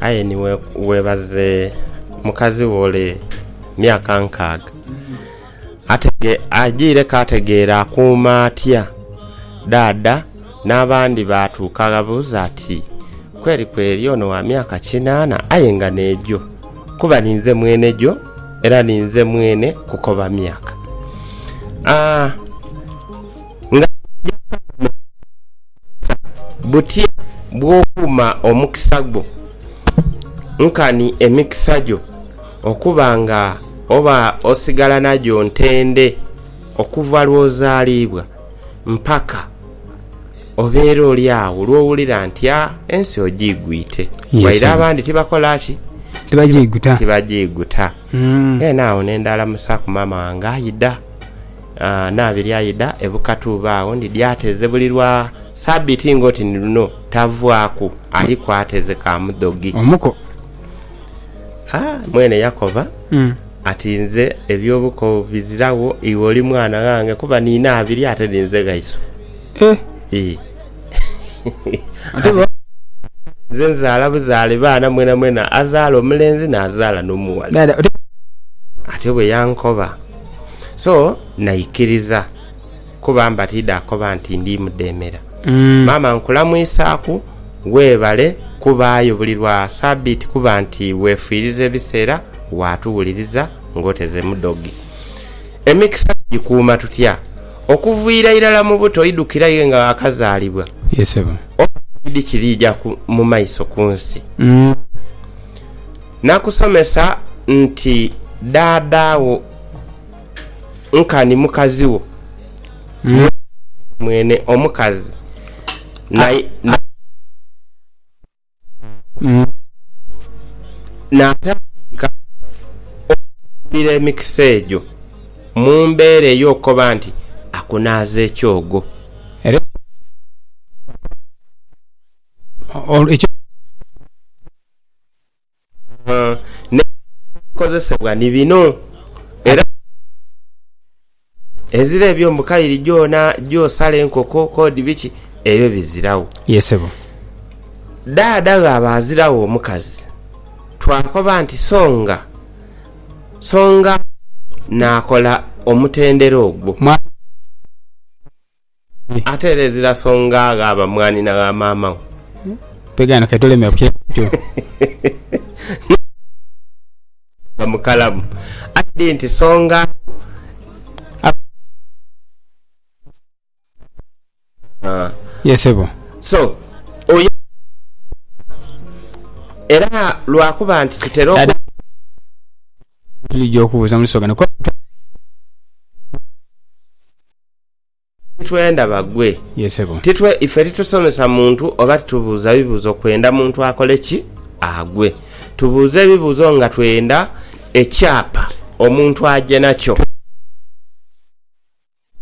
Aye ni webaze mukazi wo ole myaka nkaaga. Agyireku ategeere akuuma atya dhaadha n'abandi baatuuka gha buuza ati kweli kweli ono wa myaka kinaana aye nga n'egyo? Kuba ninze mwene gyo era ninze mwene kukoba myaka. Nga bw'oja kuba mu mukisa, butya bw'okuuma omukisa gwo? Nkani emikisa gyo okuba nga oba osigala nagyo ntende okuva lw'ozaaliibwa mpaka obeera oli agho lw'owulira nti, a, ensi ogiigwite. Waire abandi tibakola ki? Tibagiiguta. Tibagiiguta. Then agho ne ndhalamusaaku maama wange, aidha. Naabe lyaidha e Bukatuuba agho ndi dyateeze buli lwa Sabiiti ng'oti ni luno tavwaaku aliku ateeze ka mudhogi. Omuko. Ha, mwene yakoba ati, Nze eby'obuko biziragho, iwe oli mwana ghange kuba niina abiri ate ni nze ghaiso. Ii. Nze nzaala buzaale baana mwenamwena, azaala omulenzi naazaala n'omughala. Ate bwe yankoba. So naikiriza kuba mba tidhakoba nti ndi mudheemera. Maama nkulamwisaaku, weebale kubaayo buli lwa Sabiiti kuba nti weefiiriza ebiseera waatuwuliriza ng'oteze mu dhoge. Emikisa tugikuuma tutya? Okuviira irala mu buto oidhukira aye nga waakazaalibwa, oba toidhi kiriijaku mu maiso ku nsi. Nakusomesa nti dhaadha wo nkani mukazi wo, mwene omukazi naidha naatandika okukugulira emikisa egyo mu mbeera ey'okukoba nti akunaaza ekyogo. Naye ebikozesebwa ni bino era ezira ebyo mbu kairi gyona gyosala enkoko kodi biki ebyo biziragho. Ye sebo. Dhaadha ghaba aziragho omukazi twakoba nti songa songa naakola omutendera ogwo. Ate era ezira songa ghaba mwanhi na gha maama we. Pegaano ke tolemera ku kyeeto. N'okuba mukalamu. Aye di nti songa agho aba mwanhi. Ye sebo. So, oyo era lwa kuba nti tutera oku. Dada tuli gya okubuuza muli sogana kuba. Titwenda bagwe. Yee sebo. Titwe, ife titusomesa muntu oba titubuuza bibuuzo kwenda muntu akole ki? Agwe. Tubuuza ebibuuzo nga twenda ekyapa omuntu aje nakyo.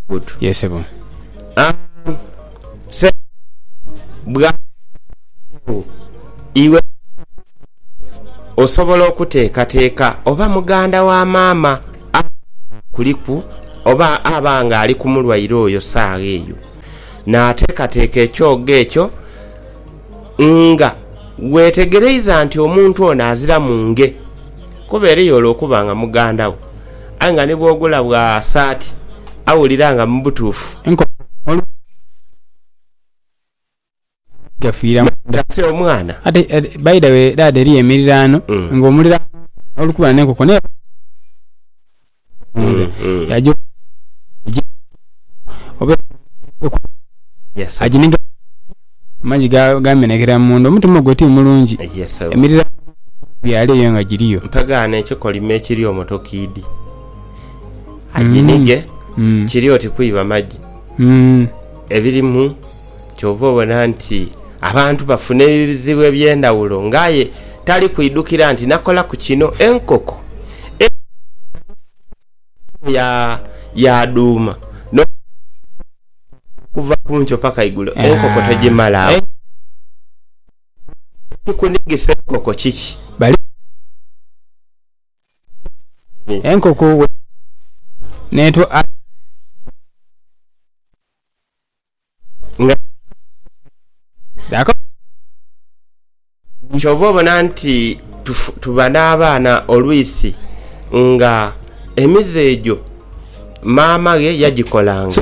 Good. Yee sebo. Aah sebo bwaba afiiregho iwe osobola okuteekateeka oba muganda wa maama nga akuliku oba aba nga ali ku mulwaire oyo saagha eyo, naateekateeka ekyogo ekyo nga weetegereiza nti omuntu ono aziramu nge, kuba eriyo ole okuba nga muganda wo aye nga ni bw'ogula bwa saati awulira nga mu butuufu enkofiira emuluma. gafiira munda. Ate omwana. Ate by the way dad eriyo emiriraano nga omuliraano oli kuba n'enkoko naye nze yagyo oba aginiga amagi gamenekera munda omutima ogwo ti mulungi emiriraano byalo eyo nga giriyo. Mpa gaana ekikolimo ekiri omutokiidi aginige kiri oti kwiba magi ebirimu. Kyova obona nti abantu bafuna ebizibu eby'endhawulo nga aye tali kwidhukira nti nakolaku kino, enkoko eidha yaadhuuma n'okusasaana okuva ku nkyo paka igulo enkoko togimalagho. Ekikunigisa enkoko kiki? Enkoko bwedhigwa n'etwala... nga dha kola kyova obona nti tuba n'abaana olwisi nga emize egyo maama ghe yagikolanga.